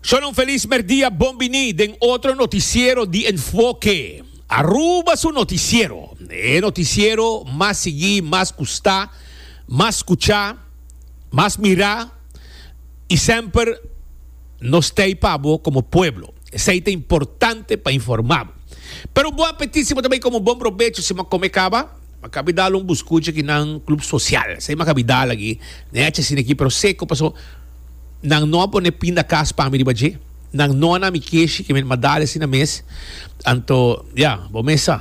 Shon un felis merdia bon bini den otro noticiero di Enfoke Aruba su noticiero e noticiero mas sigui mas gusta mas scucha mas mira y semper nos stay pa bo como pueblo esey ta importante pa informa bo pero bo apetit si bo ta bay como bon probecho si bo a come caba Makabi dal un buscucha ki nan club social. Esei makabi dal aki. Nan echa asina aki pero seco paso nan no a pone pin da cas pa mi riba dje. Nan no a na mi keshi ke mi m'a dal asina mes. Anto, ya, bo mes sa.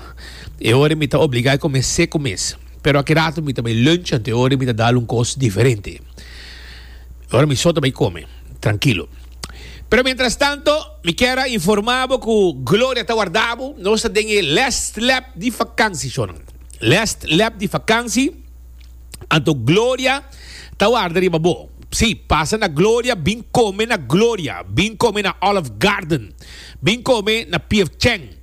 E ora mi ta obliga e come seco mes. Pero aki rato mi ta bay lunch anto e ora mi ta dal un cos diferente. E ora mi so ta bay come. Trankilo. Pero mientras tanto. Mi kier a informa bo cu Gloria ta warda bo. Nos ta den e last lap di vakantie, shornan. Last lap di vakantie, anto Gloria ta warda riba bo. Sí, pasa na Gloria, bin come na Gloria, bin come na Olive Garden, bin come na P.F. Chang,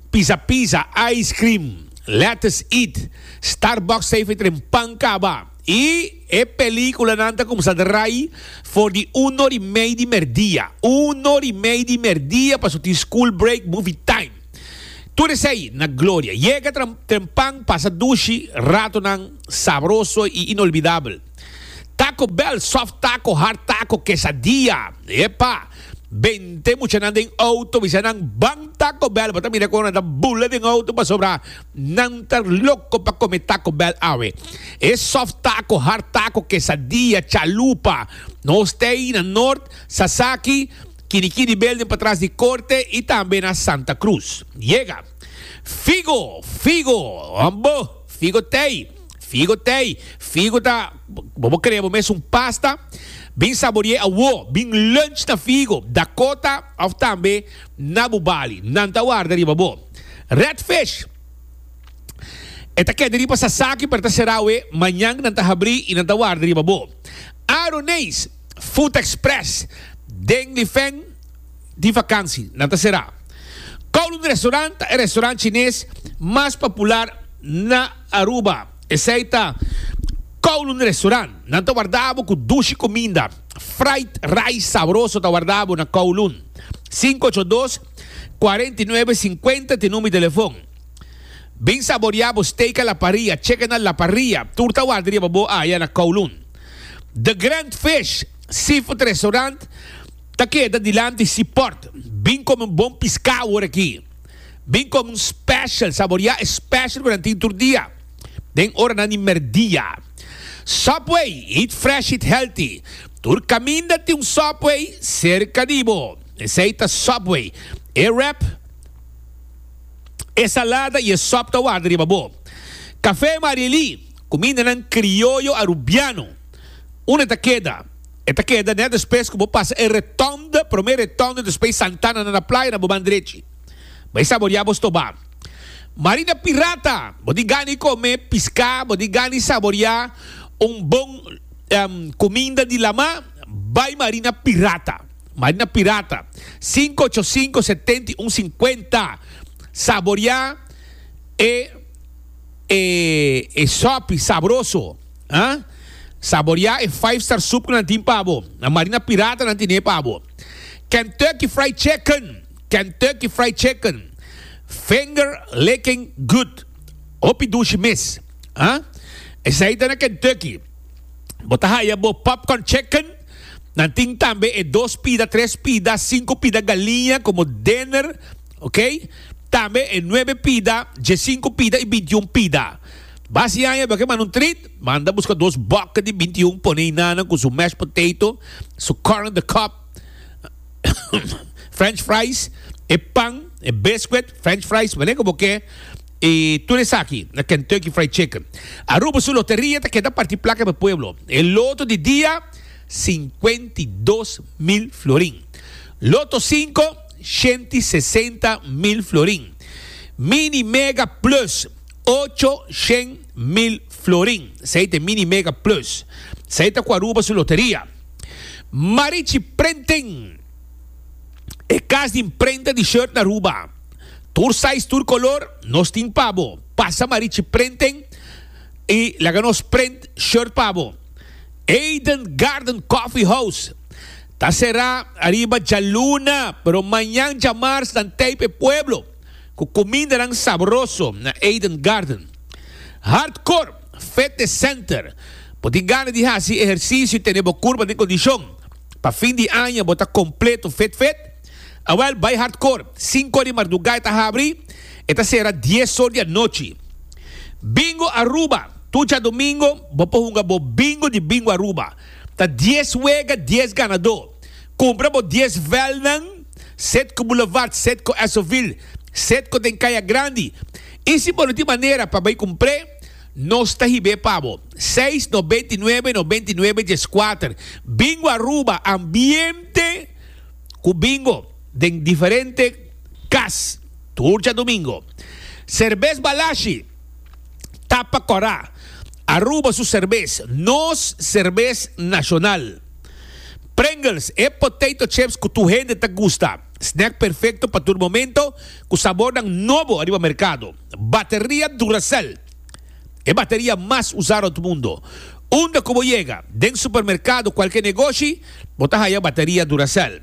Pizza Pizza, Ice Cream, Lettuce Eat, Starbucks ta e fetren pan caba. Y e peliculanan ta comsa draai for di un or y mei di merdia. Un or y mei di merdia paso tin school break, movie time. Tur esey na gloria. Yega trempan, pasa dushi, ratonan sabroso y inolvidabel. Taco Bell, soft taco, hard taco, quesadilla. Epa! Bente muchanan den auto bisa nan ban Taco Bell. Bo ta mira como nan ta bula den auto pasobra. Nan ta loko pa come taco bell awe. E soft taco, hard taco, quesadilla, chalupa. Nos t'ey na Noord, Sasaki, Kinikini Building patras di Corte y tambe na Santa Cruz. Yega! Figo! Figo! Ambo! Figo t'ey! Figo t'ey! Figo ta, bo bo crea bo mes un pasta. Bin saborié awo. Bin lunch na Figo, Dakota of tambe. Na bu bali, nan ta warda riba bo. Red Fish E ta keda riba Sasaki pero ta sera awe, mañan nan ta habri y nan ta warda riba bo. Aroneis Food Express den Lifeng di vakansi, nan ta sera. Kowloon Restaurant ta e restaurant chines mas popular na Aruba. Esei ta Kowloon Restaurant. Nan ta warda bo ku dushi kuminda, fried rice sabroso ta warda bo na Kowloon. Sinku ocho dos, kuarenta i nuebe, sinkuenta t'e number di telefon. Bin saboriá bo steak a la parrilla, chicken a la parrilla, tur ta warda riba bo aya na Kowloon. The Grand Fish Seafood Restaurant ta keda dilanti Seaport. Bin kome un bon piskau ora aki. Bin come un special, saboria e special cu nan tin tur dia den oranan di merdia. Subway, eat fresh eat healthy. Tur caminda tin un Subway cerca di bo. Esey ta Subway. E wrap, e salada y e sop ta warda riba bo. Cafe Marieli, cumindanan crioyo Arubiano. Una ta keda. E ta keda nèt despues ku bo pasa e Retònde, promé Retònde despues Santana nan na playa na bo ban drechi. Bai saboriá bo stobá. Marina Pirata, bo tin gana di kome piská, bo tin gana di saboriá un bon kuminda di lamá, bai Marina Pirata. Marina Pirata, sinku ocho sinku setenta i un sinkuenta. Saboriá e e sòpi sabroso. Ha? Saborea e five star soup cu nan tin pa bo. Na Marina Pirata nan tine pa bo. Kentucky Fried Chicken! Kentucky Fried Chicken! Finger licking good. Hopi dushi mes. Ha? Esai ta na Kentucky. Bo ta haya bo popcorn chicken. Nan tin tambe e dos pida, tres pida, cinco pida galiña como dinner. Ok? Tambe e nuebe pida, diecinco pida y bintiun pida. Basi aña beke manda un treat, manda buska dos bòkke di binti un pone inana ku su mashed potato, su corn on the cob, french fries, e pan, e biscuit, french fries, wale ku bo ke i tur esaki na Kentucky Fried Chicken. Aruba su loteria ta keda parti plaka pa e pueblo. E loto di dia, sinkuenta i dos mil florin. Loto sinko, shenti sesenta mil florin. Mini, Mega, Plus. Ocho shen mil florin. Esei ta e Mini Mega Plus. Esei ta ku Aruba su loteria. Marichi Printing, e kas di imprenta di shirt na Aruba. Tur size, tur kolor, nos tin pa bo. Pasa Marichi Printing i laga nos print shirt pa bo. Eden Garden Coffee House ta será ariba djaluna, pero mañan djamars nan tape e pueblo. ku kumindanan sabroso na Eden Garden. Hardcore Fitness Center, Bo tin gana di hasi ehersisio i tene bo kurpa den kondishon? Pa fin di aña bo ta kompleto fit fit? Awèl, bai Hardcore! Sinku or di mardugá e ta habri, e ta sera dies or di anochi. Bingo Aruba, Tur djadumingu bo por hunga bo bingo di Bingo Aruba. Ta dies wega, dies ganadó. Kumpra bo dies vèlnan. sed ku bulevard, sed ku Esovil, sed ku den kaya grandi. I si bo no tin manera pa bai kumpr'é, nos ta hib'é pa bo. Seis nobenta i nuebe nobenta i nuebe dieskuater. Bingo Aruba, ambiente ku bingo den diferente kas tur djadumingo. Serbes Balashi ta pa kòrá. Aruba su serbes, nos serbes nashonal. Pringles, e potato chips cu tur hende ta gusta. Snack perfecto pa tur momento, cu sabornan nobo ariba mercado. Bateria Duracell, e bateria mas usa rond mundo. Unda cu bo yega, den supermercado, cualke negoshi, bo ta haya bateria Duracell.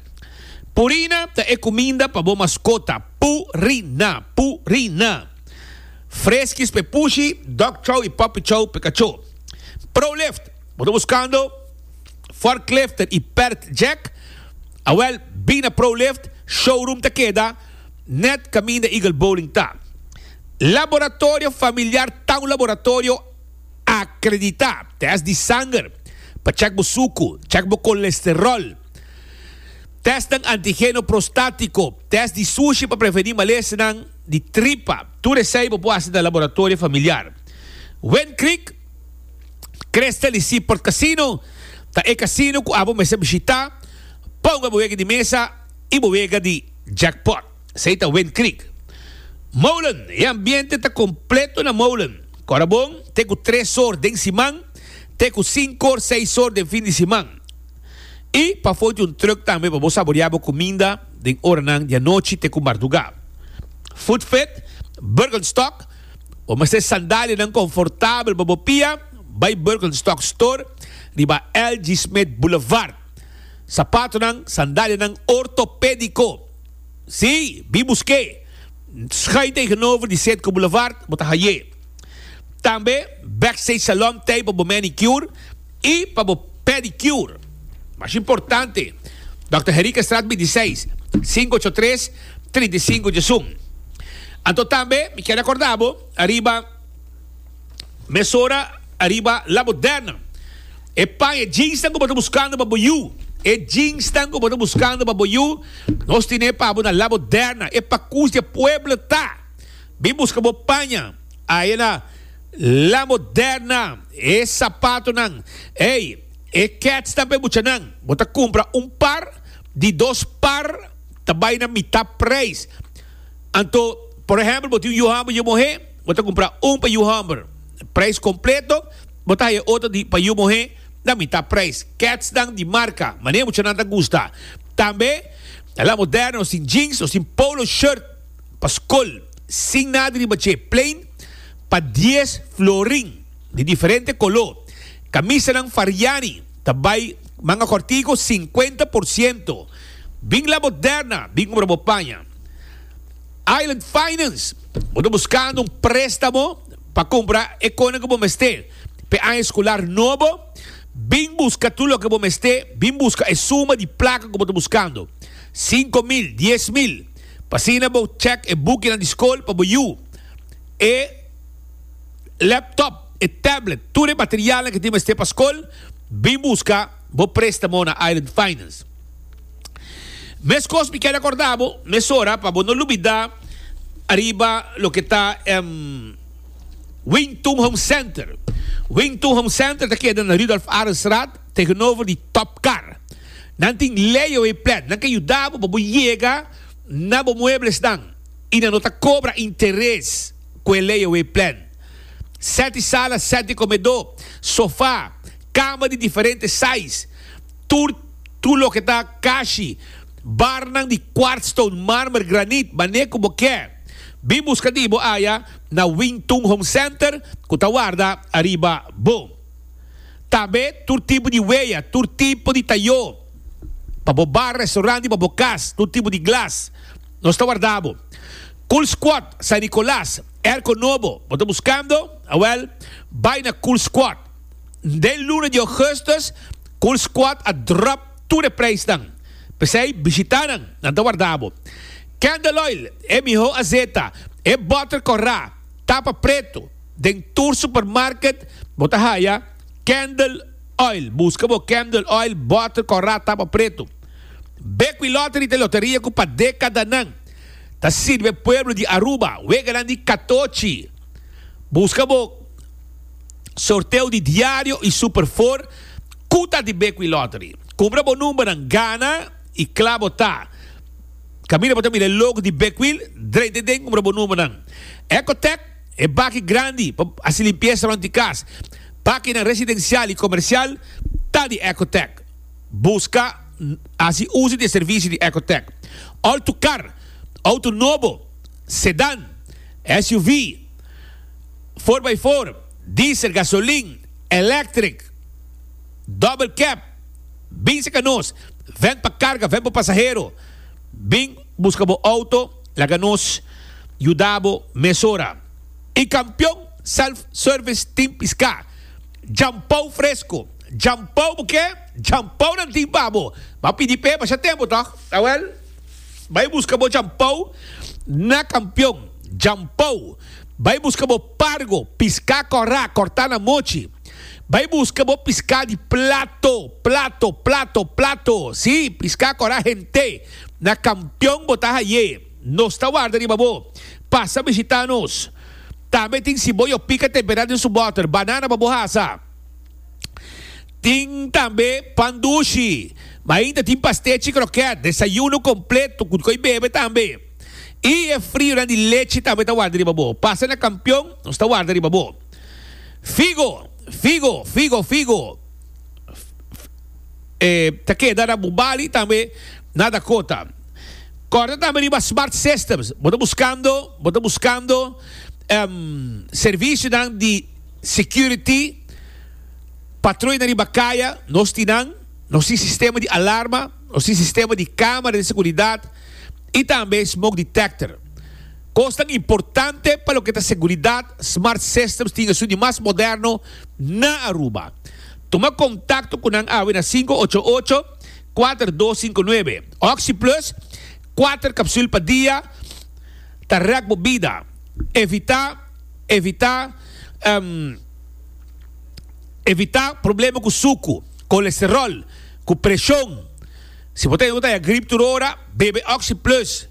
Purina ta e cuminda pa bo mascota. Pu-ri-na, Pu-ri-na. Freskis p'e pushi, dog chow y puppy chow p'e cacho. Prolift, bo ta buscando. Forklifter y Perth Jack, awel Bina Prolift showroom ta keda net caminda Eagle Bowling ta. Laboratorio familiar ta un laboratorio acredita, test di sanger pa check bo sucu, check bo colesterol, testnan antigeno prostatico, test di sushi pa preveni malesenan di tripa, tur esey bo por haci na laboratorio familiar. Wind Creek. Crystal di Seaport Casino ta e casino cu abo mester bishita pa hunga bo wega di mesa y bo wega di jackpot. Esey ta Wind Creek Molen. E ambiente ta completo na Molen, cora bon te cu tres or den siman te cu cinco or, seis or den fin di siman. Y pafo tin un truck tambe pa bo saborea bo cuminda den oranan di anochi te cu marduga. Food Fit, Burgenstock. Bo mester sandalianan konfortabel pa bo pia bai Birkenstock Store riba L. G. Smith Boulevard. Sapatonan, sandalianan ortopédiko. Sí, bin busk'é! Schuin tegenover di Sedco Boulevard bo ta hai'é. Tambe Backstage Salon Tay pa bo manicure. I pa bo pedicure. Mas importante, Dòkter Herikenstraat bintiseis, sinku ocho tres, trinta i sinku djesun. Anto tambe mi kere akorda bo ariba mesora ariba La Moderna. E paña jeansnan ku bo ta buskando pa bo yu, e jeansnan ku bo ta buskando pa bo yu, nos tine pa bo na La Moderna. E pakus di e pueblo ta. Bin buska bo paña. Ayina la moderna e sapatonan. Ey, e ketsnan pa e buchanan. Bo ta kumpra un par, di dos par ta bai na mitá preis. Anto, por ehèmpel, bo tin un yu hòmber yu muhé, bo ta kumpra un pa yu hòmber preis kompleto, bo ta haya otro di pa yu muhé na mitá preis. Ketsnan di marka, manera e buchanan ta gusta. Tambe la moderna, sin jeans o sin polo shirt. pa skol sin nada riba dje, plain, pa dies florin di diferente koló. Kamisanan Fariani ta bai manga kòrtiku sinkuenta por siento. Bin la Moderna bin kumpra bo paña. Island Finance, bo ta buskando un préstamo pa kumpra e kosnan ku bo mester p'e aña eskular nobo? Bin buska tur loke bo mester, bin buska e suma di plaka ku bo ta buskando, sinku mil, dies mil. P'asina bo check e bukinan di skol pa bo yu. E laptop, e tablet, tur e materialnan ke tin mester pa skol, bin buska bo prestamo na Island Finance. Meskos mi keda korda bo mesora pa bo no lubida ariba loke ta e Wingtun Home Center. Wingtun Home Center ta keda na Rudolf Arendsraad Tegenover di Top Car. Nan tin layaway plan. Nan ke yuda bo pa bo yega na bo mueblesnan y nan no ta cobra interes cu e layaway plan. Set di sala, set di comedo, sofa, cama di diferente size, tur tur loke ta cashi, barnan di quartz stone, marmer, granit, manera cu bo kier. Bin busca di bo aya na Wing Tung Home Center cu ta warda ariba bo. Tabé tur tipo di wea, tur tipo di tayó, pa bo bar, restaurant i pa bo kas, tur tipo di glas, nos ta warda bo. Cool Squad, San Nicolas, Erco Nobo, bo ta buskando? Awèl, bai na Cool Squad. Den luna di Augustus, Cool Squad a drop tur e preisnan, p'esei bishita nan, nan ta warda bo. Candle Oil, e mihó azeta, e bòter kòrá, tapa pretu, Den tur supermarket bo ta haya Candle Oil. Buska bo Candle Oil bòter kòrá tapa pretu. Bekwin Lottery ta e loteria ku pa dekadanan ta sirbi e pueblo di Aruba, weganan di katochi. Buska bo sorteo di diario i Super Four ku ta di Bekwin Lottery. Kumpra bo numbernan, gana i kla bo ta. Kaminda bo ta mira e logo di Bekwin, drenta den kumpra bo numbernan. Ecotech. E baki grandi pa hasi limpiesa rond di kas, bakinan residensial i komersial ta di Ecotec. Buska hasi uso di e servisio di Ecotec. Auto kar, auto nobo, sedan, SUV, four by four, diesel, gasolin, electric, double cab, bin se ka nos, ven pa karga, ven pa pasahero, bin. Buska bo auto, laga nos yuda bo mesora. E Campeon Self Service tin pisca, djampou fresco, djampou bo ke djampounan tin pa bo. Ba pidi p'e basha tempo toch? Awel, bai buska bo djampou na Campeon, djampou, bai buska bo pargo, pisca corra, corta na mochi, bai buska bo pisca di plato, plato, plato, plato, si, pisca corra hente. Na kampion bo ta haye. Nos ta warda riba bo. Pasa bishita nos. Tambe tin siboyo pika temperá den su bòter, banana pa bo hasa. Tin tambe pan dushi. Ma ainda tin pastechi krokèt. Desayuno kompleto ku dikoi bebe tambe. I e frionan di lechi tambe ta warda riba bo. Pasa na kampion, nos ta warda riba bo. Figo, figo, figo, figo. ta keda na bu bali tambe na Dakota. Kòrda tambe riba Smart Systems. Bo ta buskando, bo ta buskando servisionan di security, patroi na riba kaya, nos tin nan. Nos tin sistema di alarma, nos tin sistema di kamera di seguridat i tambe smoke detector. Kosnan importante pa loke ta seguridat, Smart Systems tin esun di mas moderno na Aruba. Tuma kontakto ku nan awe na sinku ocho ocho, kuater dos sinku nuebe. Oxi Plus, kuater kapsul pa dia, ta rèk bo bida. Evitá, evitá, evitá problema ku suku, kolesterol, ku preshon. Si bo ta hende ku ta haña grip tur ora, bebe Oxi Plus.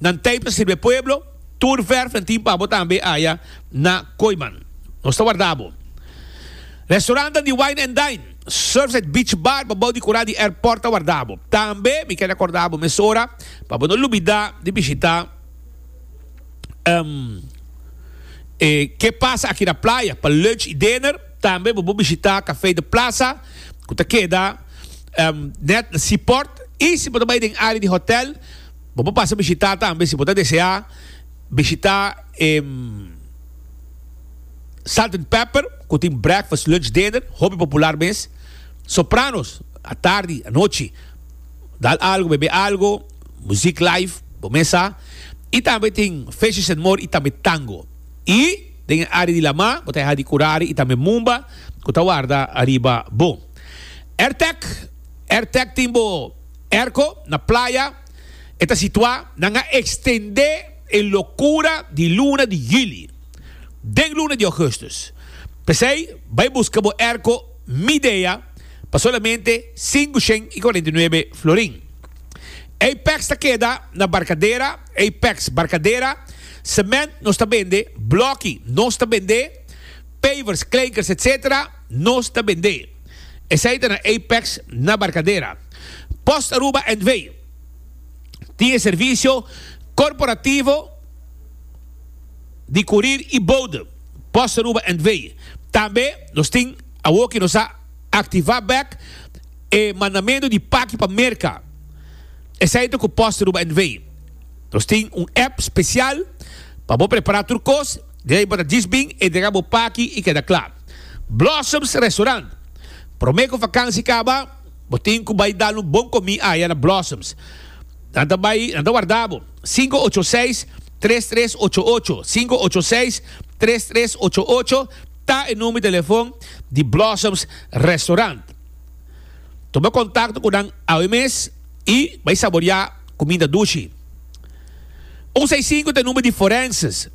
Nan tei pa sirbe pueblo, tur verfnan tin pa bo tambe aya na Koiman. Nos ta warda bo. Restaurantnan di wine and dine, Surfside Beach Bar pa bou di kura di airport ta warda bo. Tambe mi keda korda bo mesora pa bo no lubida di bishita e Ke Pasa Aki na Playa pa lunch y dinner. Tambe bo por bishita Café de Plaza cu ta keda net na Seaport y si bo ta bay den área di hotel, Bo por pasa bishitá tambe si bo ta deseá bishitá e Salt and Pepper ku tin breakfast, lunch, dinner hopi popular mes. Sopranos atardi, anochi dal algo, bebe algo, muzik live bo mes sa. I tambe tin Fishes and More i tambe tango. I den e área di lamá bo ta yaha di kurare i tambe mumba ku ta warda ariba bo. Airtec, Airtec tin bo. Erko na playa e ta situá. Nan a ekstendé e lokura di luna di yuli den luna di ògùstùs. P'esei bai buska bo erko Midea pa solamente sinku shen i kuarenta i nuebe florin. Apex ta keda na Barkadera, Apex, Barkadera. Sement nos ta bende, blòki nos ta bende, pavers, kleikers etc. Nos ta bendé esei ta na Apex na Barcadera. Post Aruba NV. tin e servicio corporativo di curir y bode Post Aruba NV. Tambe nos tin awo ki nos a activa bek e mandamento di paki pa Merca esei ta cu Post Aruba NV. Nos tin un app special pa bo prepara tur cos. Di ai pa ta djis bin e dega bo paki i keda kla. Blossoms Restaurant. Prome ku vakansi kaba, bo tin ku bai dal un bon komi aya na Blossoms. Nan ta bai, nan ta warda bo. Sinku ocho seis, tres tres ocho ocho, sinku ocho seis, tres tres ocho ocho ta e number di telefon di Blossoms Restaurant. Tuma kontakto ku nan awe mes i bai saboriá kuminda dushi. Un sei sinku ta e number di Forenses.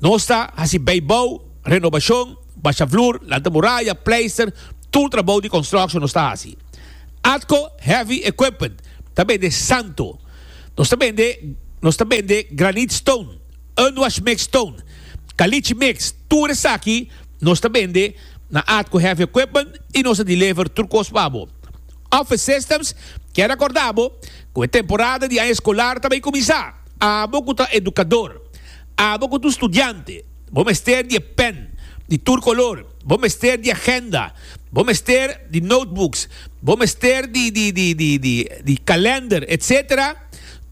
Nos ta hasi beibou, renobashon, basha flur, lanta muraya, pleister, tur trabou di construction nos ta hasi. Atco heavy equipment ta bende santo. Nos ta bende nos ta bende granite stone, unwash mix stone, caliche mix, tur esaki nos ta bende na Atco heavy equipment y nos ta deliver tur cos pa bo. Office systems, kier racorda bo cu e temporada di aña escolar ta bay cuminsa. Abo cu ta educador. Abo ku tu studiante, bo mester di e pen di tur kolor, bo mester di agenda, bo mester di notebooks, bo mester di kalender, etsetera,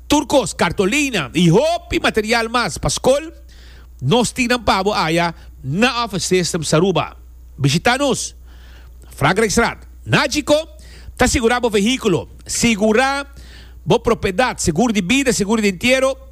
tur kos, kartolina i hopi material mas pa skol, nos tin nan pa bo aya na Office Systems Aruba. Bishita nos, Frankrijkstraat, Najico, ta sigurá bo vehíkulo, sigurá bo propiedat, seguro di bida, seguro di entiero,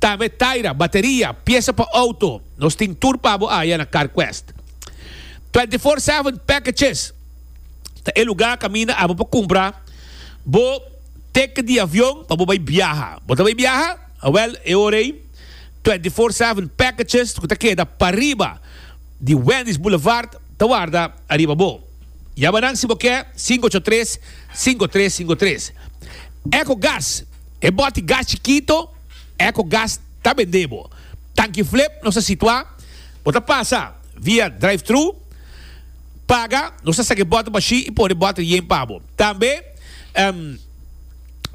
Tambe taira, bateria, piesa pa outo. Nos tin tur pa bo aya na CarQuest. Twenty Four Seven Packages ta e lugá kaminda abo pa kumpra bo teke di avion pa bo bai biaha. Bo ta bai biaha? Awèl, e ora ei Twenty Four Seven Packages ku ta keda pariba di Wendy's Boulevard ta warda ariba bo. Yabanan si bo ke sinku ocho tres, sinku tres sinku tres. Ecogas. E boti gas chikito, Eco Gas, ta bendé bo. Tanki flip, nos ta situá, bo ta pasa via drive-thru, paga, nos ta saki boti bashí i pone boti rién pa bo. Tambe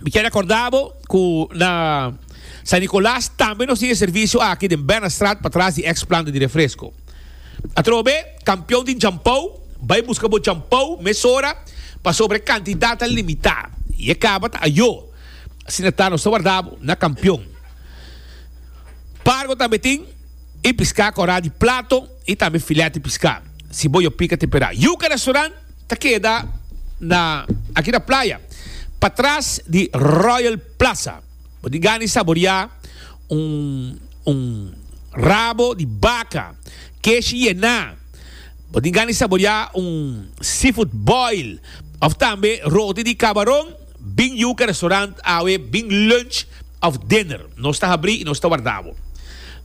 mi ta rekordá bo ku na San Nicolas tambe nos tin e servisio aki den Bernardstraat patras di ex planta di refresko. Atrobe. Kampion di djampou, bai buska bo djampou mesora, pasobra e kantidat ta limitá i e kaba ta ayó. Asina ta, nos ta warda bo na kampion. Pargo tambe tin, i piská korá di plato i tambe filèt di piská, si bo yo pika temperá. Yuka Restaurant ta keda na aki na playa, patras di Royal Plaza. Bo tin gana di saboriá un rabo di baka. Kesh yená. Bo tin gana di saboriá un seafood boil òf tambe roti di kabaron. Bin yuka restaurant awe bin lunch òf dinner. Nos ta habrí i nos ta wardá bo.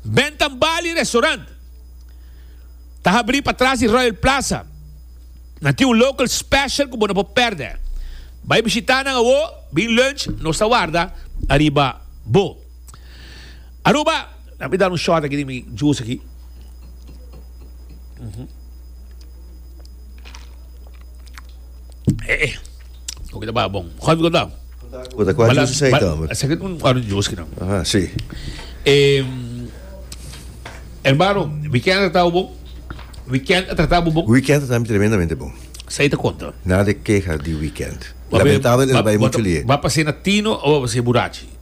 Bentambali Restaurant ta habrí patras di Royal Plaza. Nan tin un local special ku bo no por pèrdè. Bai bishitá nan awó, bin lunch, nos ta warda ariba bo. Aruba! Dami dar un shot aki di mi juice aki. Eh, eh. Oki ta baha bon. Juan Goda. Goda, kua juice sa ita, hombre? Sa un orange juice ki nan. Aha, si. Eh, hermano, weekend a tratabo bon? Weekend a tratabo bon? Weekend a tratami tremendamente bon. Sa ita konta? Nada de keha di weekend. Lamentabel, el bai mucho lie. Ba pase na tino o ba pase burachi?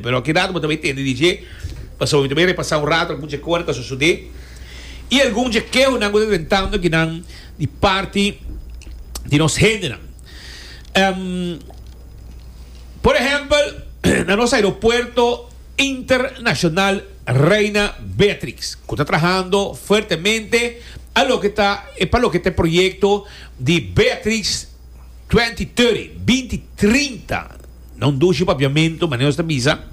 Pero aki rato bo ta bay tende di dje, pasobra bo ta bay repasá un rato algun dje kosnan ku a sosodé i algun dje keonan ku ta tentando aki nan di parti di nos hendenan. Por ehèmpel, na nos aeropuerto internashonal Reina Beatrix, ku ta trahando fuertemente a loke ta e pa loke ta e proyekto di Beatrix twenti toti, binti trinta, Non dushi papiamentu, manera nos ta bisa.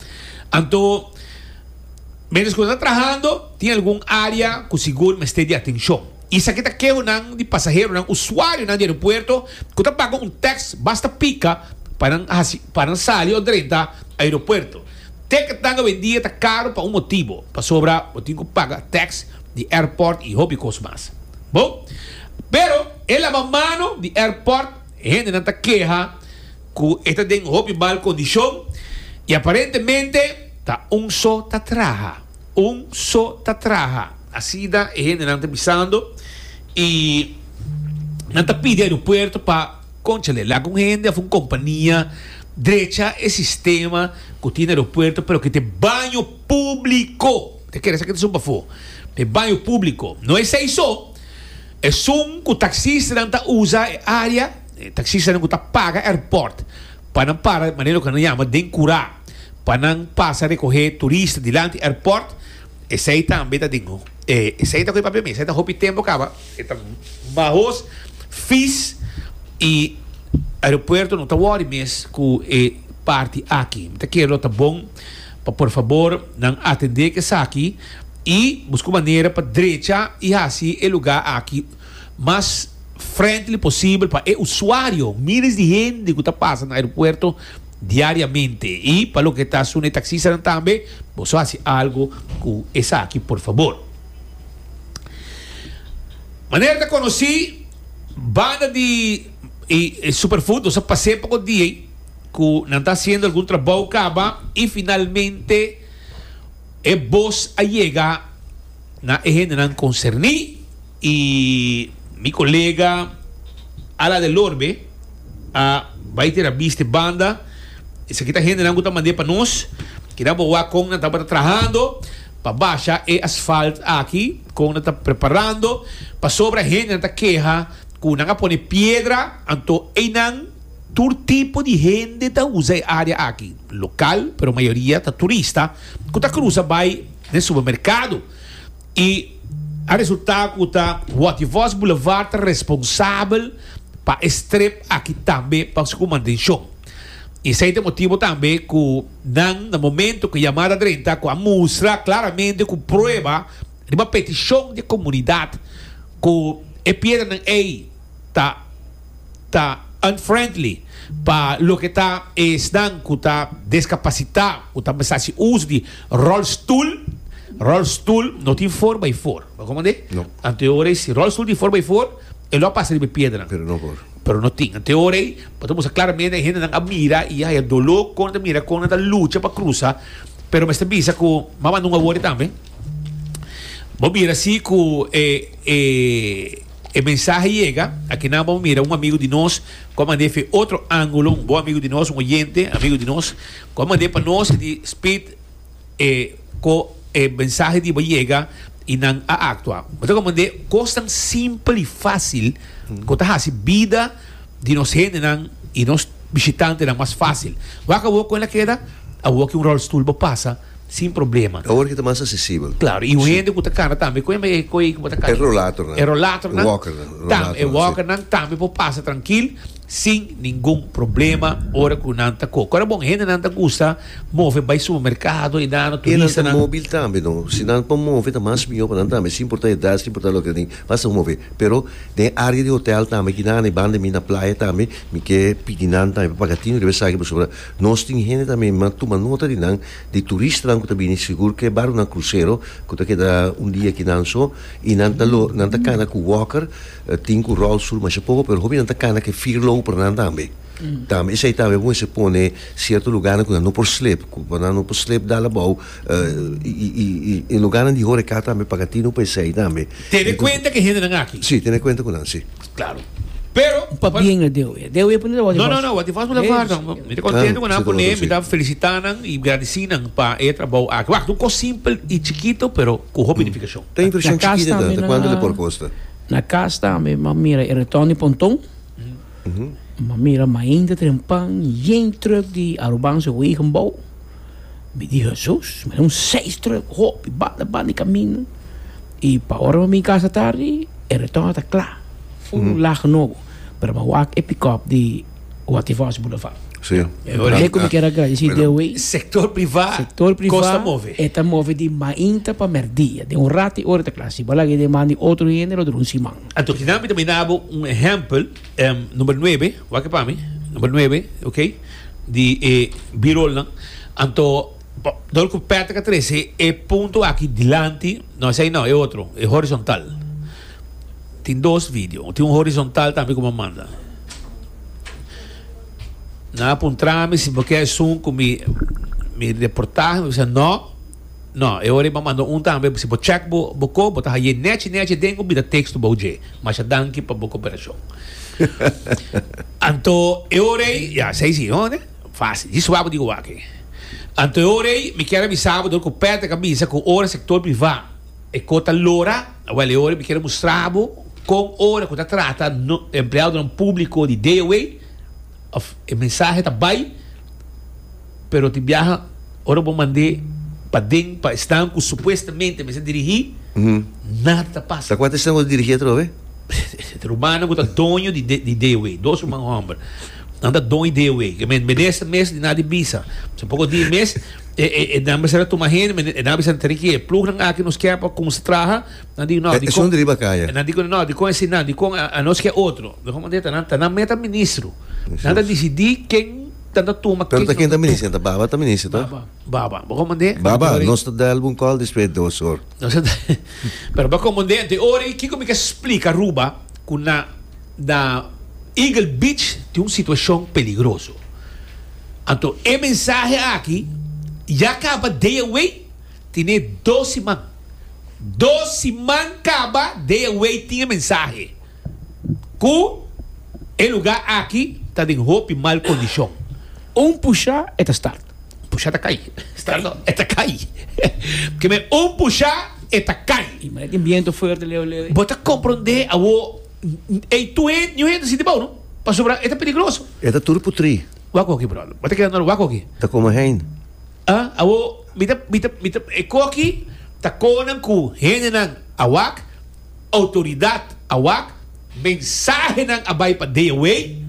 Anto, mientras cu nos ta trahando, tin algun area cu sigur mester di atencion. Esaki ta kehonan di pasaheronan, usuarionan di aeropuerto, cu ta paga un tax basta pica pa nan haci, pa nan sali o drenta aeropuerto. Ticketnan awendia ta caro pa un motibo, pasobra bo tin cu paga tax di airport y hopi cos mas. Bon, pero e lava mano di airport, e hendenan ta keha. Cu e ta den hopi mal condicion y aparentemente. Ta un so ta traha, un so ta traha, asina e hendenan ta bisando y nan ta pidi aeropuerto pa, conchale, laga un hende of un compania drecha e sistema cu tin aeropuerto pero cu ta e baño publico, ta kere esaki ta sun pafo, ta e baño publico. No esey so, esun cu taxistanan ta usa e area. E taxistanan ku ta paga airport pa nan para, manera loke nan yama den kura, pa nan pasa rekohé turista dilanti airport, esei tambe ta den e esei ta koe papia mi, esei ta hopi tempu kaba, e ta mahos, vis i aeropuerto no ta wòri mes ku e parti aki. Mi ta kere lo ta bon pa por fabor nan atendé ke esaki i buska un manera pa drecha i hasi e lugá aki. mas friendly posibel pa e usuario, miles di hende ku ta pasa na aeropuerto diariamente. I pa loke ta suna e taksistanan tambe, boso hasi algu ku esaki por fabor. Manera ta konosí, banda di e Superfood nos a pas'é poko dia ku nan ta hasiendo algun trabou kaba i finalmente e bos a yega na e hendenan konserní. Y mi colega Ala de Lorbe a bay tira bis te banda. Esaki ta hendenan cu ta mande pa nos. Keda bo wak con nan tabata trahando pa basha e asfalt aki, con nan ta preparando. Pasobra hendenan ta keha cu nan a pone piedra, anto eynan. Tur tipo di hende ta usa e area aki, local, pero mayoria ta turista cu ta cruza bay den supermercado. I a resulta ku ta Waterworks Boulevard ta responsabel pa e strip aki tambe pasobra ku mantenshon. I esei ta e motibu tambe ku nan na momentu ku yamada drenta ku a mustra klaramente ku prueba riba petishon di e komunidat ku e piedra nan ei ta. ta unfriendly pa loke ta esnan ku ta deskapasitá ku ta mester hasi uso di rolstoel. Rolstoel no tin for bai for, bo komprendé? No. Anto e ora ei si rolstoel tin for bai for, e lo a pasa riba e piedra. Pero no por. Pero no tin. Anto e ora ei bo ta musa klaramente hendenan a mira i a haya doló kon nan ta mira, kon nan ta lucha pa krusa. Pero mester bisa ku mama nun a wori tambe. Bo mira si ku e e. E mensahe yega, aki nan bo mira un amigu di nos ku a mand'é fe otro ángulo, un bon amigu di nos, un oyente, amigu di nos, ku a mand'é pa nos di spit e ku e mensahe di bo yega i nan a aktua. Bo ta komprendé kosnan simpel i fásil ku ta hasi bida di nos hendenan i nos bishitantenan mas fásil. Wak awor kon el a keda? Awor ki un ròlstul bo pasa. sin problema. E awor ki ta mas asesibel. Claro, y un hende cu ta cana tambe, cu hembe e cu ey cu bo ta cana? E rollatornan. E rollatornan. E walkernan, rollatornan, si. Tambe, e walkernan tambe por pasa trankil sin ningun problema ora cu nan ta co. Kora bon, hendenan ta gusta move bay supermercado y nano, turistanan. Y nan ta mobil tambe, no? Si nan por move ta mas miho pa nan tambe, sin importa edad, sin importa loke, mi basta cu move. Pero den e area di hotel tambe aki nan, e banda di mi, na playa tambe, mi ke pidi nan tambe pa paga tin, riba esaki, pasobra. Nos tin hende ta mema tuma nota di nan, di turistanan ku ta bini sigur ku e barku na krusero ku ta keda un dia kinan so i nan ta lo nan ta kana ku wòker tin ku ròlstul masha poko pero hopi nan ta kana ku e fir logu pa nan tambe tambe esei tambe bo mester pone sierto lugarnan ku nan no por slep ku nan no por slep dal abou i lugarnan di horeca tambe paga tinu pa esei tambe tene kuenta ku e hendenan aki si tene kuenta ku nan si. Claro. Pero. Pa bien lo deo e. Deo e pone lawasi fos. No, no, no. Wasi fos por lavar nan. Mi ta contento cu nan pone. Mi ta felicita nan y gradeci nan pa e trabao aki. Wacht, un cos simpel y chikito pero cu hopi edificacion. Ta impresion chikito e ta. Cuanto le por costa? Na cas tambe mi a mira e retorno di ponton. Mi a mira mainta tren pan yen truck di Arubanse wegen bou. Mi di, Hesus, mi ta un seistre hopi, banda banda di kaminda. I pa ora mi bin kasa tardi, e retorno ta kla, ful laha nobo. Pero mi wak e pikòp di Waterfalls Boulevard. Sí. E ora ei ku mi ker agradesí Bueno. Deus ei. Sektor privá Sektor privá kos ta move. e ta move di mainta pa mèrdia. Den un ratu e ora ta kla. Si bo laga i den man di otro hende lo dura un siman. Anto kina mi ta bira bo un ehèmpel. Em, number nuebe, wak pa mi, number nuebe, ok, di e B-rollnan. Anto, pa, dor ku Patrick a trese e punto aki dilanti, no esei no, e otro, e horizontal. Tin dos video, tin un horizontal tambe ku bo a manda. Nan a puntra mi si bo ke esun ku mi, mi reportahe, mi bisa no. No, e ora ei bo manda un tambe, si bo check bo bo ko, bo ta haye nechi nechi den ku bida tekstu bou dje. Masha danki pa bo koperashon. Anto e ora ei, ya, sa ei si, no? Ne? Fásil. Dje suá bo di goa aki. Anto e ora ei, mi kier a bisa bo dor ku Patrick a bisa ku ora sektor privá e ko ta lora, wèl e ora ei mi kier a mustra bo kon ora ku ta trata no empleadonan públiko di DOW, Of e mensahe ta bai, pero tin biaha ora bo mand'é paden pa esnan ku supuestamente mester dirigí, nada ta pasa. Ta kuantu esnan ku ta dirigí atrobe? E rumannan ku ta doño di di Dewey, dos ruman hòmber. Nan ta doño di Dewey. Ke men minister mes di nada e bisa. So poko dia mes e e nan mester a tuma hende, men e nan a bisa nan tene ke e plugnan aki nos kè pa kuminsá traha. Nan di, No, di kon, e nan di ku nan, no, di kon esei nan, di kon anos ke otro. Mehó manera ta nan, ta nan meta ministro. Nan ta disidí ken ta ta tuma, ken no ta tuma. Pero ta ken ta ministro, ta baba ta ministro ta? Baba, baba. Mehó manera. Baba, nos ta da algun kòl despues dos sor. Nos ta da, pero ba komandé ante ora i kiko mi ke splika Aruba ku na na Eagle Beach tin un situashon peligroso. Anto e mensahe aki ya kaba dea wei. Tine dos siman. Dos siman kaba dea wei tin e mensahe ku e luga aki ta den hopi mal kondishon. Un pusha e ta start. Pusha ta kai. Start no, e ta kai. Keme un pusha e ta kai. I manera tin biento fuerte leu leu. Bo ta kompronde awo ei tur hende, niun hende ta sinti bou no, pasobra e ta peligroso. E ta tur putri. Wak oki brother. Bo ta keda nor wak oki. Ta komo hein. A, Awor, mi ta, mi ta, mi ta, e kos aki ta konan ku hendenan a wak, outoridat a wak, mensahenan a bai pa dea wei,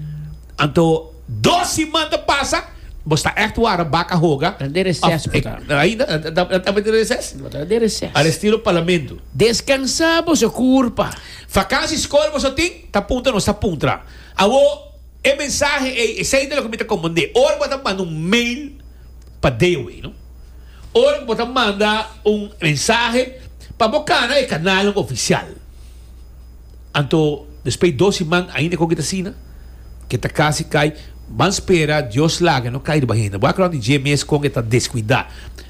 anto dos siman ta pasa, bo sta ègt wara baka hoga, Nan den reses bo ta. of, ainda, nan tambe den reses? Bo ta den reses. Alestilo Parlamento. Deskansá boso kurpa. Vakansi skol boso tin? Ta puntra nos ta puntra. Awor. E mensahe ei, esei ta loke mi ta komand'é, ora bo ta manda un mail pa Dewey, no? Ora bo ta manda un mensahe, pa bo kana e kanalnan ofisial. Anto, despei dos siman ainda kon ke ta asina, ke ta kasi kai, ban spera Dios laga e no kai riba hende. Bo a knorna di dje mes kon ke ta deskuidá.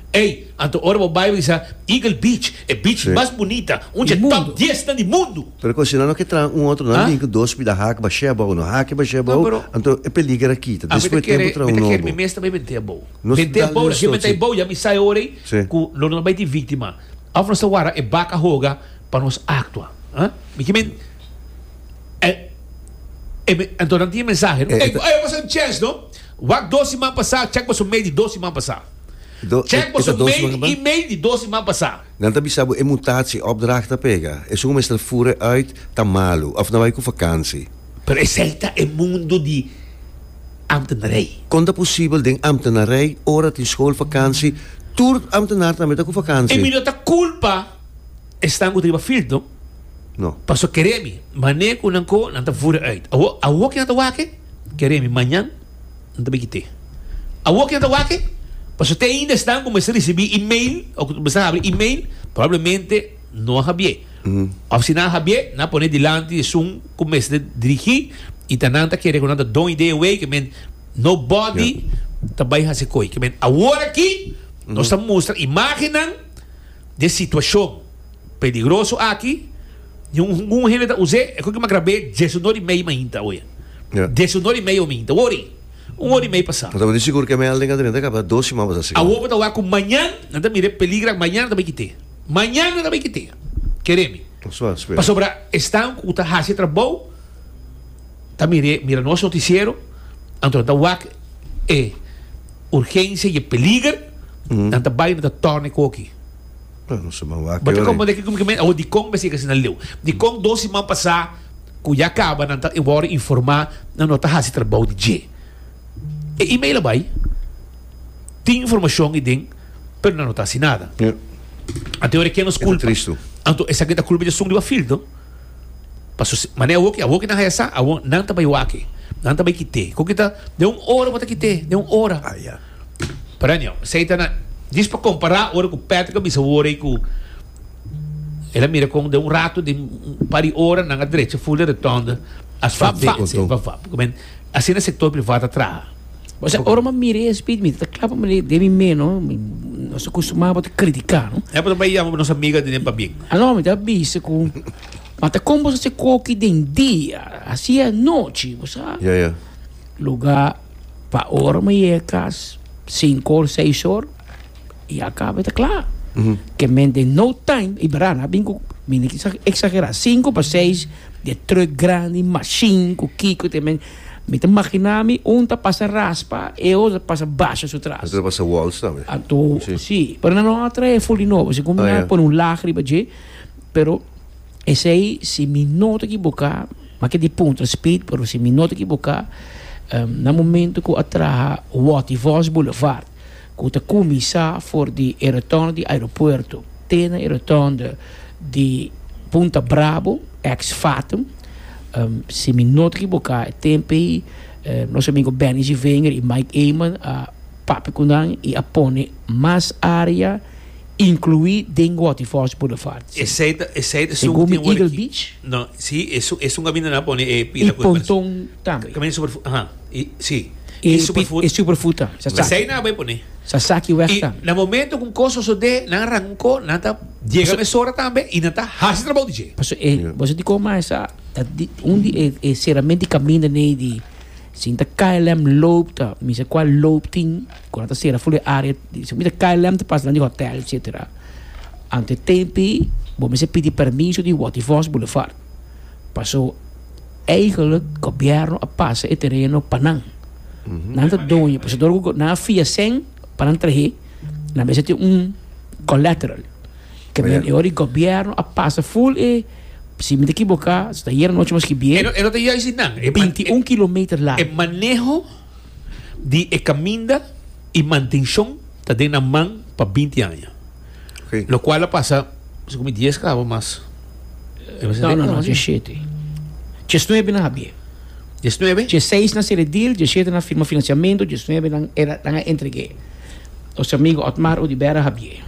Ey, anto ora bo bai bisa Eagle Beach, e beach mas bunita, un dje top dies nan di mundu. Pero cu asina no ke traha un otro nan bin cu dos bida haki ba sheba o no haki ba sheba bo, anto e peliger a kita. Despues di tempo traha un nobo. Mi ta kere mi mes tambe bente abou. Bente abou na ke bente abou ya mi sa e ora ey cu lo no bai tin victima. Of nos ta wara e bak a hoga pa nos actua. Mi ki men anto nan tin e mensahe no. Ey, ey a pasa un chance no. Wak dos siman pasa, check boso medio dos siman pasa. Check boso mail y email di dos siman pasa. Nan ta bisa bo e mutatie of draag ta pega. Esun bo mester fura e uit, ta malu of na bai cu vakantie. Pero esey ta e mundo di ambtenarij. Con ta posibel den ambtenarij ora tin schoolvakantie tur ambtenaar tambe ta cu vakantie? Emilio ta culpa esnan cu ta riba field no. No. Paso keremi, mane cu nan ko nan ta fura uit. Awo, awo ki nan ta wak e? Keremi, mañan? Nan ta bikit'é. Awor ku nan ta wak-e, pasobra te ainda esnan ku mester risibí email òf ku mester habri email, probablemente no a habi'é. Òf si nan a habi'é, nan a pon'é dilanti di esun ku mester dirigí i ta nan ta kere ku nan ta don ideia away ku men nobody ta bai hasi ko'i. Ku men awor akí nos ta mustra imágennan. den situashon peligroso aki, ningun hende ta us'é, e koki mas grab'é, dies i nor i mei mainta, oye, dies i nor i mei ominta, un or'i, un or'i mei pasá. Nan ta bini sigur ku e melding a tene ta kaba dos siman pasá sigur. Awor bo ta wak ku mañan nan ta mir'é peligra ku mañan nan ta bai kit'é, mañan nan ta bai kit'é, kere mi, pasobra esnan ku ta hasi e trabou. ta mir'é, mira nos notisiero, anto nan ta wak e urgensia i e peliger, nan ta bai, nan ta tòrna e koki. Bo ta kompondé ke kumikamente awor dikon mester yega asina leu? Dikon dos siman pasá ku ya kaba nan ta wòrdu informá, nan no ta hasi trabou di dje? E email a bai, tin informashon i den, pero nan no ta hasi nada. Anto e ora ke nos kulpa? Anto esaki ta kulpa di asun riba filtro? Paso mane awor ki awor ki nan haya sa, awor nan ta bay waki. Nan ta bay kite. Kon kita den un ora bo ta kite, den un ora. Ah, ya. Perenio, esey ta na, djis pa compara ora cu Patrick a bisa awor ey cu el a mira con den un rato di un par di ora nan a drecha full di retonda, asfalto, vap vap. Asina sector privat a traha. O sea, ora mi mira e speed mi ta kla pa mi den mi meno, nos ta costumá pa ta criticá, no? É pa ta bai yama pa nos amiga di den pabien. Ah, no, mi ta bisa cu, ma ta con boso hasi coki den dia, hasi anochi, bo sa? Ja, ja. Lugá pa ora mi yega cas, cinco or seis or, i a caba, i ta cla. Ke men den no time, i bra, na bin cu, mi no ta exagerá, cinco pa seis, di e truck grandi, machine, cu kico te men, Mi ta magina mi un ta pasa raspa e otro ta pasa basha su tras. Otro ta pasa waltz tambe. Anto si, pero nan lo a trahe full di nobo, segun mi a pone un laag riba dje, pero esey si mi no ta ekiboka, make di puntra speed, pero si mi no ta ekiboka na momento ku a traha Waterfalls Boulevard. ku ta kuminsá for di e rotond di aeropuerto te na e rotond di Punta Brabo, ex Fatum, si mi no ta ekiboká e tempu ei nos amigo Benny Zivinger i Mike Eman a papia ku nan i a pone mas área inkluí den Waterfalls Boulevard. Segun mi Eagle Beach. I ponton tambe. Sí. I e superfood. E superfood ta. Sa sa. Esei nan a bai pone. Sa sa ki wèg ta. I na momento ku un kos sosodé, nan a rankó, nan ta yega mesora tambe i nan ta hasi trabou di dje. Paso e boso di koma e sa ta di un di e e serament di kaminda nei di sin ta KLM loop ta mi sa kua loop tin ku nan ta sera ful e área di si mita KLM ta pasa nan di hotèl etsetera. Ante tempi bo mester pidi permiso di Waterfors Boulevard paso Eigenlijk gobierno a pasa e tereno pa nan. Nan ta doño, pues door cu nan a fia cen pa nan trahe, nan mester tin un collateral. Cabia e ora di gobierno a pasa full e, si mi ta equiboca, si ta ayer anochi mas ki bier, E no, e no ta juist di nan. E man- binti un kilometer E largo. maneho di e caminda y mantencion ta den nan man pa binti aña. Okay. Lo cual a pasa, si comi 10 cabo mas. Eh, Mas No, no, no, di siete. Ches nueve na habie. 19? Ches seis na sere deal, ches siete na firma financiamento, ches nueve nan era nan a entregue. Os amigo Otmar Odibera habie.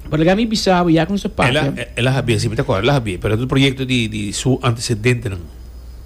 Por lega mi bisa bo ya con sa Ela, papia. ela había, si me te acuerdo, ela había, pero el proyecto di, di su antecedente, ¿no?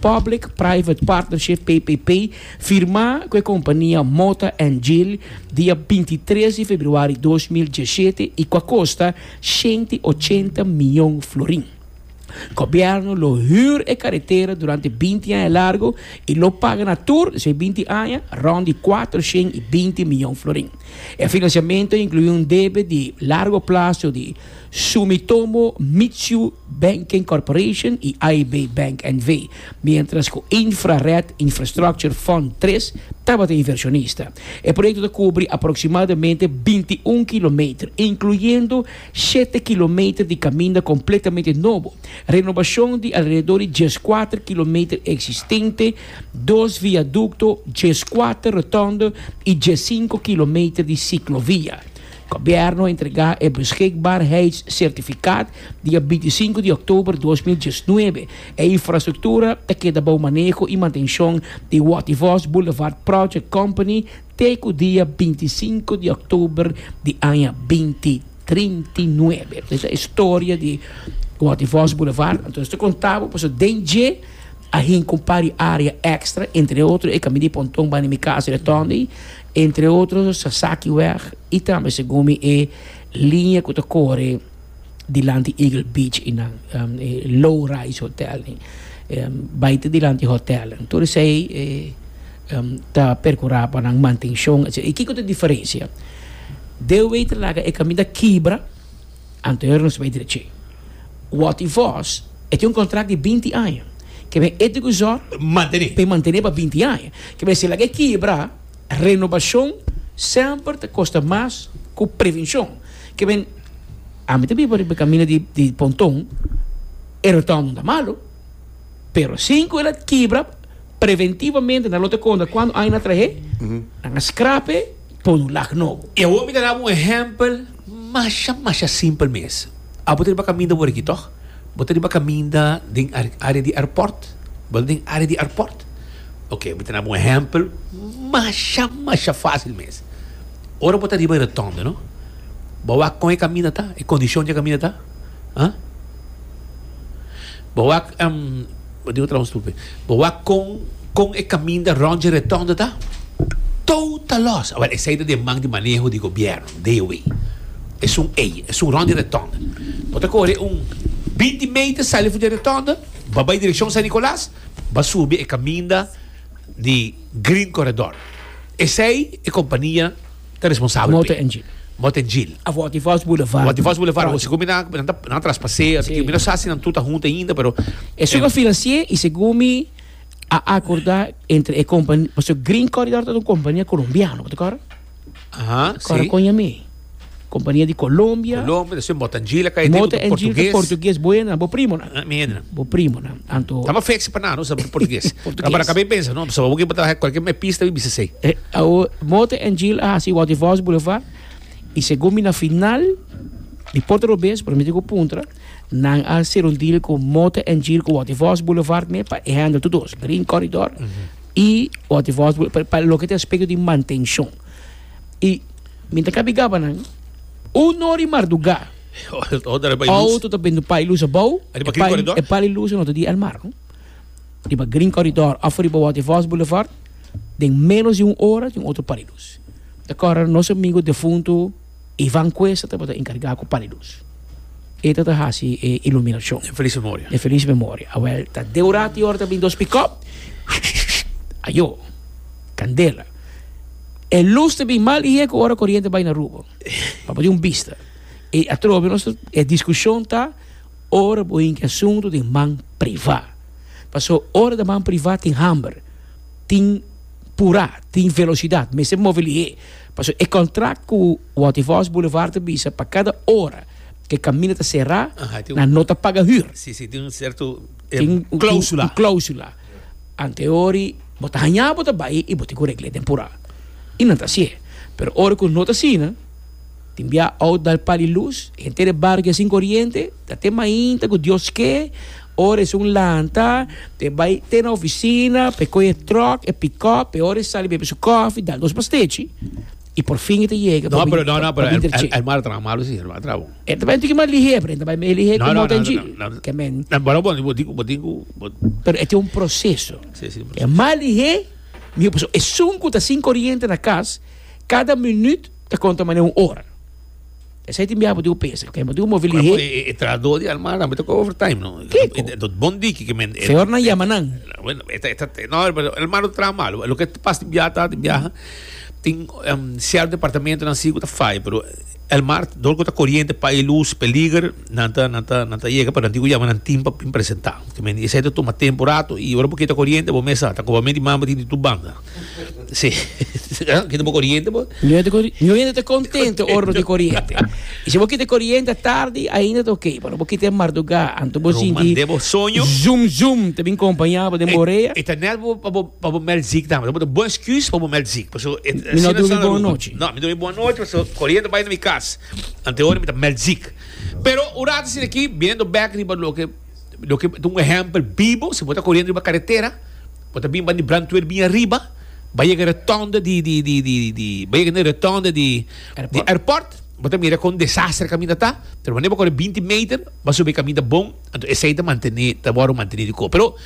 Public Private Partnership, PPP, firmá ku e kompania Mota and Gil dia bintitres di februari dos mil diesshete i ku a kosta shenti i ochenta mion florin. Gobièrnu lo hür e karetera durante binti aña largu i lo paga na tur di su e binti aña rònt di kuater shen i binti mion florin. E finansiamentu a inkluí un debe di largu plaso di Sumitomo Mitsyu Banking Corporation y AIB Bank NV, mientras cu Infrared Infrastructure Fund tres tabata inversionista. E proyecto ta cubri aproximadamente binti un kilometer, incluyendo shete kilometer di caminda completamente nobo, renobacion di alrededor di dieskuater kilometer existente, dos viaducto, dieskuater rotonde y diessinco kilometer di ciclovia. Gobièrnu a entregá e Beschikbaarheidssertifikaat dia bintisinku di òktober dos mil diesnuebe. E infrastruktura ta keda bou maneho i mantenshon di Wativos Boulevard Project Company te ku dia bintisinku di òktober di aña binti trintinuebe. Esei ta e storia di Wativos Boulevard. Anto nos ta kontá bo pasobra den dje a hinka un par di área èkstra, entre otro e kaminda di Ponton banda di mi kasa di Tòndey. Entre otro Sasaki wèg i tambe segun mi e liña ku ta kore dilanti Eagle Beach i nan e low rise hotel ni bai ta dilanti hotel tur esei e ta perkurá pa nan mantenshon etcetera. I kiko ta diferensia? Dewe ta laga e kaminda kibra. Anterior nos bai drechi. Wòt i vòs e tin un kontrakt di binti aña. Ke men e deguzor pa e mantené pa binti aña. Ke men si e laga e kibra, renobashon semper ta kosta mas ku prevenshon. Ke men, ami ta biba riba e kaminda di ponton, e rotònda no ta malu, pero sin ku el a kibra preventivamente nan lo ta konta kuantu aña nan a trah'é, nan a skrap'é. pon un lak nobo. E awor mi ta daba un ehèmpel masha masha simpel mes. Abo ta riba kaminda wor aki tòg? Bo ta riba kaminda den área di airport? Bo ta den área di airport? Oke, mi ta daba un ehèmpel masha masha fásil mes. Ora bo ta riba e rotònda, no? Bo a wak kon e kaminda ta, e kondishon dje kaminda ta? Ãa? Bo a wak. Bo dibu trabou stupe. Bo wak kon kon e kaminda rond dje retondo ta? Tou ta los. Awor, esei ta den man di maneho di gobièrnu, Dewey. Esun ei, esun rond dje retondo. Bo ta kore un binti meter sali for dje retondo, ba bai direkshon San Nikolas, ba subi e kaminda di Green Corredor. Esei e kompania. ta responsabel p'e. Mote Engil. Mote Engil. A Forty Falls Boulevard. Forty Falls Boulevard, project. Según mi nan, nan ta, nan a traspas'é, a tiki, mi no sa si nan tur ta hunta ainda, pero. E su a financi'é i segun mi a acordá entre e compa, pasobra Green Corridor ta un compania colombiano, bo ta acorda? Aha, si. Ta acorda con Yamé. Compania di Colombia. Colombia, despues Mote Engil a kai. Mote Engil ta portugues buenan, bo primonan. Mi hende nan. Bo primonan. Anto. Taba feci pa nano sa portugues. Portugues. Para acabei pensa, no, so boki bata cualquier me pista mi bisa sei. E awo Mote en Jill a hasi Wouter Vos Boulevard y según mi na final di Porto Robes por miti ku puntra nan a ser un deal ku Mote en Jill ku Wouter Vos Boulevard me pa e handle tu dos Green Corridor y Wouter Vos Boule- pa, pa loke ta aspecto di mantencion y mi ta kabi gaba nan uno ori marduga Auto ta bendo pali lus abou, e pali lus no ta di El Mar. Riba Green Corridor of riba Waterfalls Boulevard, den menos di un ora tin otro pali lus. Ta kòrda nos amigo defuntu Ivan Cuesta tabata enkargá ku pali lus. E ta ta hasi e iluminashon. Den felis memoria. Den felis memoria. Awèl, ta den un ratu ora ta bin dos pikòp. Ayo! Kandela. E lus ta bin mal i heko ora koriente bai na Aruba. Pa bo tin un bista. E atrobe nos ta, e diskushon ta ora bo hinki asuntu den man privá. Paso ora den man privá tin hamber, tin purá, tin velosidat, mester move lihé. Paso e kòntrak ku Waterfalls Boulevard ta bisa pa kada ora ku e kaminda ta será, nan no ta paga hür. Sí, sí, tin un serto, e, klósula. Tin un klósula. Anteori bo ta hañá bo ta bai i bo tin ku regl'é den purá. I nan ta hasié. Pero ora ku no ta asina, tin bia out dal pal di lus, henter e barrio ke sin koriente, ta te mainta ku Dios ke, ora e sun lanta, e bai te na ofisina pa e kohe e tròk, e pikòp, e ora e sali bebe su kòfi, dal nos pastechi. Y por fin e ta yega. No, pero no, no, pero el, el, el mara trabajo malo, sí, el mara trabajo. E ta bai tiki mal lihe, pero e ta bai me lihe como ten chi. Que men. No, pero bon, bo digo, bo digo. Pero e tem un proceso. Sí, sí, proceso. E mal lihe, mi pues e sunku ta sin corriente na cas, cada minuut ta conta mane un hora. Esa tin biaha botiu pesa, kaya botiu movi lihe. Bueno, e, e, e trahador di Almara, mete ko overtime, no? Kiko? E, e, dot bon diki ke men... e- Señor nan e- llama nan. Bueno, eta, eta, te- no, pero el malo tra malo. Lo que pasa en viaje, ta en viaje, tin em, cierto departamento nan sí que ta fai, pero el mar, dol que ta corriente, pa y luz, peliger, nan ta, nan ta, nan ta llega, pero nan digo llama nan tin pa pin presentar. Que men, ese te toma tiempo rato, y ahora porque ta corriente, bo mesa, ta como men di mambo tin di tu banda. Sí. Kita bo corriente, bo? No te corriente. No gente contento oro de corriente. Y si bo kita corriente tarde, ainda te ok. Pero bo kita marduga, anto bo sin di. Debo soño. Zoom zoom, te bin compañía bo de borea. Eta net bo pa bo pa bo mel ziek dan. Bo bo excuse pa bo mel ziek. Paso et. Mi no dormi bon noche. No, mi dormi bon noche, paso corriente bai na mi cas. Ante oro mi ta mel ziek. Pero urato sin aquí, biendo back riba loke loke un ejemplo bibo, si bo ta corriente riba carretera. Bo ta bin ban di Brantweer bin ariba, bai yega retonda di di di di di bai yega na retonda di di airport, bo ta mira kon desaster kaminda ta, pero wanneer bo kore binti meter bo a subi kaminda bon, anto esei ta mantene ta wòrdu mantene di koe, pero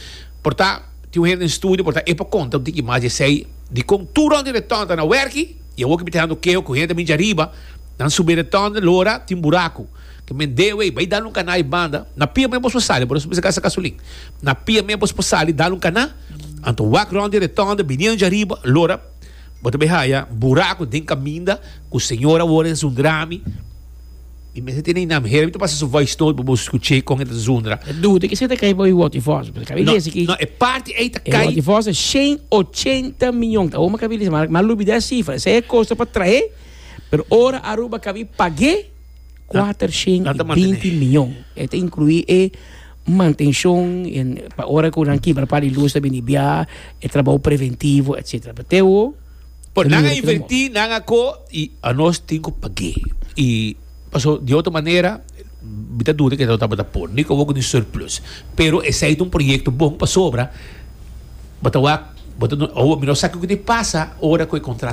por ta tin un hende den studio por ta e por konta un tiki mas di esei di kon tur rònt di retonda ta na wèrki i awor ke mi ta hendo keho ku hende ta bin dje ariba nan subi e retonda lo ora tin buraku. Ke men deo ei, bai dal un kaná ei banda, na pia men bos por sali, boso bisa gasta gasolin, na pia men bos por sali dal un kaná, anto wak rònt di retònda, bini anja ariba, lora bo ta bai haya buraku den kaminda ku señor awor a zundra mi, mi mester tene inam hera mi ta pasa su voice note pa boso skuch'é kon e ta zundra. E duda kisa ta kai pa wi Woti Fòs, paske kabi desi ki No, e parti ei ta e kai Woti Fòs ta shen ochenta miyon, awor mi kabi desi, mara mi a lubidá e sifra, esei e kosta pa traé, pero ora Aruba kabi pag'é, kuater shen i binti miyon. E ta inkluí e mantenshon pa ora ku nan kibra pa di lus ta bini bia, e trabou preventivo, etsetera. Bateo. Bo nan a invertí, nan a ko i anos tin ku pag'é. I paso di otro manera mi ta duda ke nan lo tabata por. Ni ku abo ku tin surplus. Pero esei ta un proyekto bon pasobra bo ta wak, abo mi no sa kiko tin pasa ora ku e kontrakt.